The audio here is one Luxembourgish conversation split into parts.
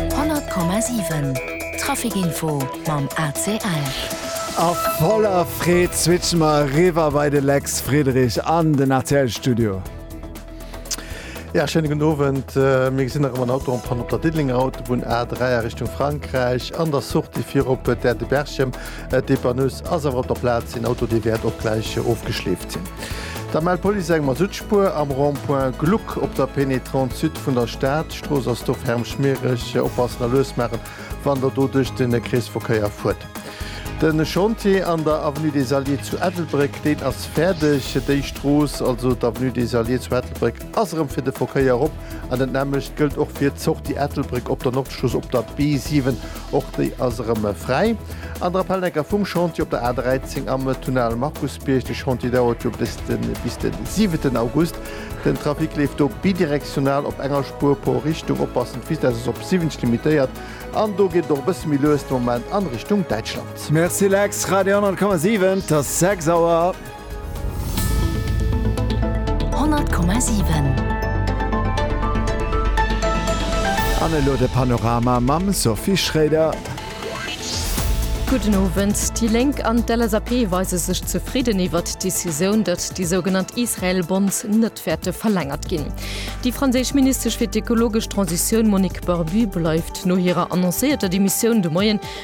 100,7 Trafic Info mam AC Esch. A voller Freed switche mer eriwwer bei de Lex Friedrich an den ACL Studio. Ja, schéine gudden Owend. Mir gesinn nach ëmmer en Auto en Panne op der Diddelenger Autobunn A3 a Richtung Frankräich, an der Sortie fir op d'Aire de Berchem. D'Dépanneuse ass awer op der Plaz, een Auto dee wäert och gläich ofgeschleeft sinn. Da mellt d'Police eng Masuttspuer am Rond-point Gluck op der Pénétrante Sud vun der Stad. D'Strooss ass do ferm schmiereg, oppassen a lues maachen, wann der do duerch de Kreesverkéier fuert. De Chantier an der Avenue des Alliés zu Ettelbréck, deen ass fäerdeg. Déi Strooss, also d'Avenue des Alliés zu Ettelbréck, ass erëm fir de Verkéier op an dat nämmlecht gëllt och fir d'Sortie Ettelbréck op der Nordstrooss op der B7 Och déi ass erëm fräi. An der Appelnecker vum Chantier op der A 13 am Tunnel Markusbierg. De Chantier dauert jo bis de bis de 7 August. Den Trafic leeft do bidirektional op enger Spuer pro Richtung. Oppassen, d'Vitess ass op 70 limitéiert an do geet et och e bësse méi lues de Moment an Richtung Däitschland. Merci Lex, Radio 100,7, 't ass 6 Auer. An elo de Panorama mam Sophie Schroeder. Gudden Owend. Déi Lénk an d'LSAP weise sech zefridden iwwert d'Decisioun, datt déi sougenannt Israel-Bonds net wäerte verlängert ginn. Déi franséisch Ministesch fir d'ekologesch Transitioun Monique Barbu bleift no hirer annoncéierter Demissioun de Moien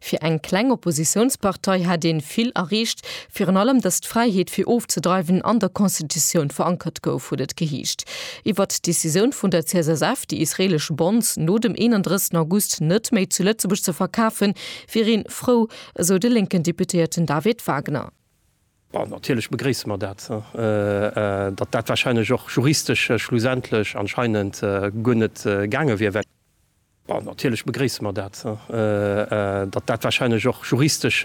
Fir eng kleng Oppositiounspartei hätt een vill erreecht, virun allem datt d'Fräiheet fir ofzedreiwen an der Constitutioun verankert gouf, huet et geheescht. Iwwert d'Decisioun vun der CSSF, déi israelesch Bonds no dem 31 August net méi zu Lëtzebuerg ze verkafen, wier een frou, esou de lénken Deputéierten David Wagner. Bon, natierlech begréisse mer dat. Datt dat warscheinlech och juristesch schlussendlech anscheinend guer net gaange wier, well. Natierlech begréisse mer dat, datt dat warscheinlech och juristesch